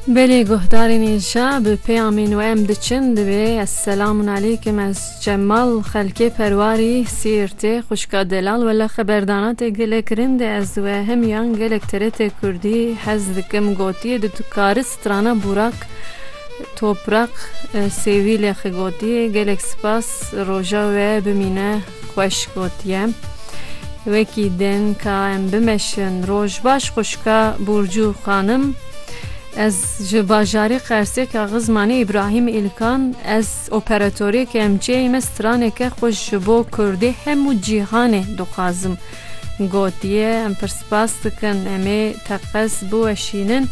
Belê guhdarên inşa bi peyamên we em diçin divê ez selamun aleykim ez Cemal xelkê perwarî Siirtê xwişka delal wele xeberdana te gelek rind e ez we hemiyan gelek TRT kurdî hez dikim gotiyê di tu kari strana Burak Topraq Sêvîlê xigotiyê gelek spas roja we bimîne. Xweş gotiye. Wekî din ka em bimeşin. Roj baş xwişka Burcu xanim. Ez ji bajarê Qersê kaxiz manê Îbrahîm Îlkan ez operatorê KMC'ê me straneke xweş ji bo kurdê hemû cîhanê dixwazim. Gotiye, Em pir spas dikin, em ê teqez biweşînin.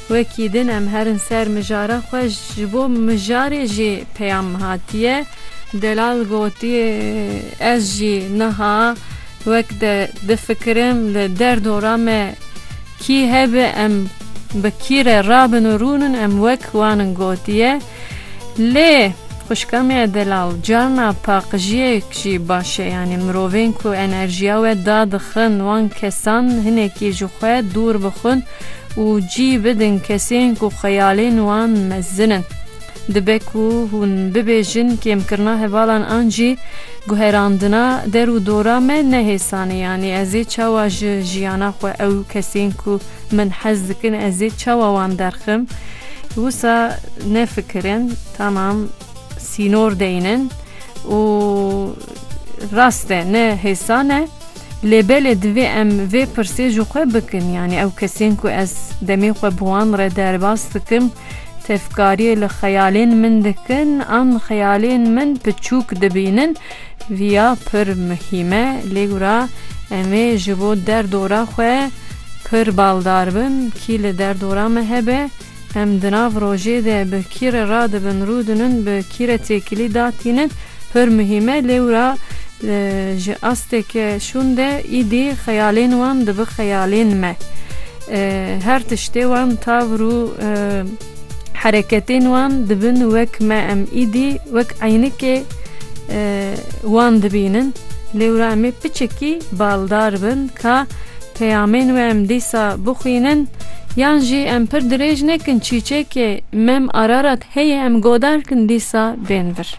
Wekî din em herin ser mijara xwe, ji bo mijarê jî peyam hatiye. Delal gotiye, Ez jî niha wek te difikirim, li der dora me kî hebe em bi kî re rabin û rûnin, em wek wan in. Gotiye. Lê xwişka me ya delal carna paqijiyek jî baş e yanî mirovên ku enerjiya we da dixin wan kesan hinekî ji xwe dûr bixwin û cî bidin kesên ku xeyalên wan mezin in. Dibe ku hûn bibêjin kêmkirina hevalan an jî guherandina der û dora me ne hêsan e yanî ez ê çawa ji jiyana xwe ew kesên ku Min hez dikin ez ê çawa wan derxim. Wisa nefikirin tamam sînor deynin û rast e ne hêsan e lê belê divê em vê pirsê ji xwe bikin yanî ew kesên ku ez demê xwe bi wan re derbas dikim tevkariyê li xeyalên min dikin an xeyalên min piçûk dibînin viya pir muhîm e lê gura em ê ji bo derdora xwe pir baldar bin kî li derdora me hebe, em di nav rojê de bi kî re radibin, rûdinin, bi kî re têkilî da tînin pir muhîm e lê wira ji asteke şûn de îdî xeyalên wan dibi xeyalên me. Her tiştê wan tavir û. Hereketên wan dibin wek me em îdî wek eynikê wan dibînin. Lêwra em ê piçikî baldar bin ka peyamên we em dîsa bixwînin yan jî em pir dirêj nekin çîçekê Mem Ararat heye em godarkin dîsa bên vir.